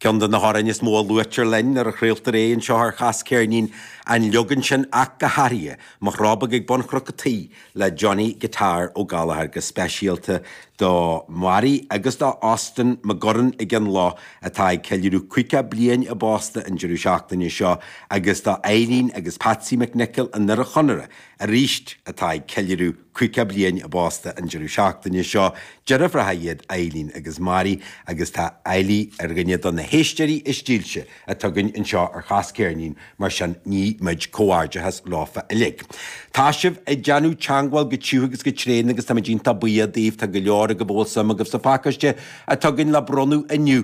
Ceann de na hamhráin is mó a luaitear linn nuair a chraoltar é anseo ar Chás Ceirnín, an leagan sin ach go háirithe, Mo Chró Beag ag Bun Chnoc a' Tí le Johnny Guitar Ó Gallagher, go speisialta do Mary agus do Austin McGurran ag an Luaidh atá ag ceiliúradh 50 bliain a bpósta an deireadh seachtaine seo agus do Eileen agus Patsy McNicholl, i nDoire Chonaire, aríst, atá ag ceiliúradh caoga bliain a bpósta an deireadh seachtaine seo, deirfiúracha iad Eileen agus Mary agus tá Eily ar dhuine do na héisteoirí is dílse atá againn anseo ar Chas Ceirnín mar sin ní muid comhghairdeachas leofa uilig. Tá sibh ag déanamh teangmháil go tiugh agus go tréan agus táimid iontach buíoch daoibh, tá go leor agaibh a bhfuil suim agaibh sa phacáiste atá againn le bronnadh inniu,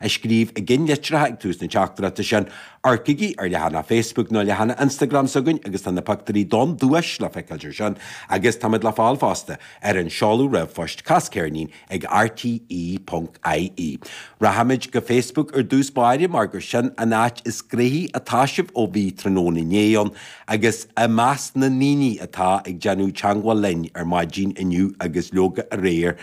a scríobh i gceannlitreacha ag tús na teachtaireachta sin. Amharcaigí ar leathanaigh Facebook nó leathanaigh Instagram s'againn agus tá na pictiúirí den duais le feiceáilt ansin agus táimid le fáil fosta ar an seoladh ríomhphoist casceirnín ag rte ponc ie. Rachaimid go Facebook ar dtús báire mar gur sin an áit is gnaithí atá sibh ó bhí tráthnóna inné ann agus i measc na ndaoine atá ag déanamh teangmháil linn ar maidin inniu agus leoga aréir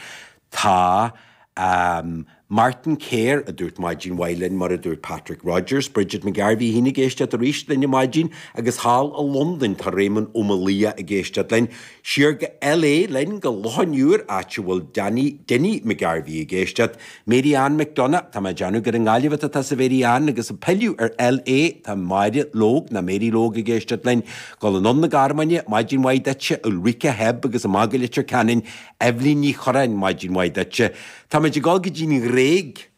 Tá, a, Martin Kerr ag ráit maidin mhaith linn, mar a dúirt Patrick Rodgers. Bridget McGarvey fhéin ag éisteacht aríst linn ar maidin, agus thall i Londain tá Réamonn Ó Maolaodha ag éisteacht linn. Siar go LA linn, go Loch an Iúir, áit a bhfuil Danny, Dinny, McGarvey ag éisteacht. Mary Ann McDonagh, tá mé ag déanamh gur i nGaillimh atá tusa, a Mhary Ann, agus ag pilleadh ar LA, tá Máire Logue, nó Mary Logue ag éisteacht linn. Ag gabháil anonn 'na Gearmáine, maidin mhaith duitse, a Ulrika, Hebb, agus a Mhag i Leitir Ceanainn, Eibhlín Ní Chorráin, Maidin mhaith duitse. Táimid ag dul go dtí an Ghréig.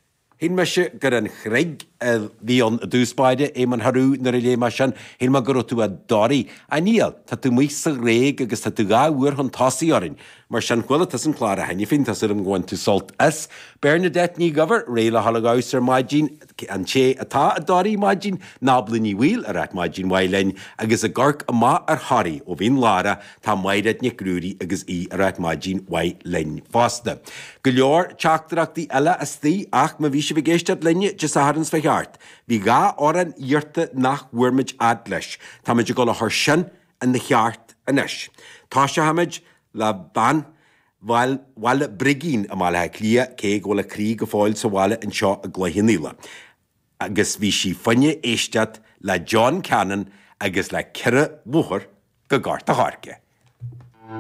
Shíl mise gur an Chreig a bhí ann i dtús báire, a Éamoinn Choiriú, nuair a léigh mé sin, shíl mé go raibh tú i dToraigh. Á níl, tá tú amuigh sa Ghréig agus tá tú dhá uair chun tosaigh orainn. Mar sin, chuala tusa an clár cheana féin, tá súil agam gur bhain tú sult as. Bernadette Ní Dhuibhir, Réidh le dhul ag fheabhas ar maidin. An té atá i dToraigh ar maidin Nábla Ní Bhaoill ag ráit maidin mhaith linn agus ag amharc amach ar Thoraigh ó Mhín Lárach tá Máiréad Nic Ruairí agus í ag ráit maidin mhaith linn fosta. Go leor teachtaireachtaí eile istigh ach má bhí sibh ag éisteacht linn Dé Sathairn seo fá cheirt. Bhí dhá amhrán iarrta nach bhfuair muid fhad leis. Táimid ag dul a chur sin ina cheart anois. Toiseochaimid le Bean Bhaile Brigín i mBaile Átha Cliath, cé go bhfuil a croí go fóill sa bhaile anseo i gCloich Cheann Fhaola, agus bhí sí ag fonn éisteacht le John Cannon agus le Chuaigh mé aon uair go Gort a' Choirce.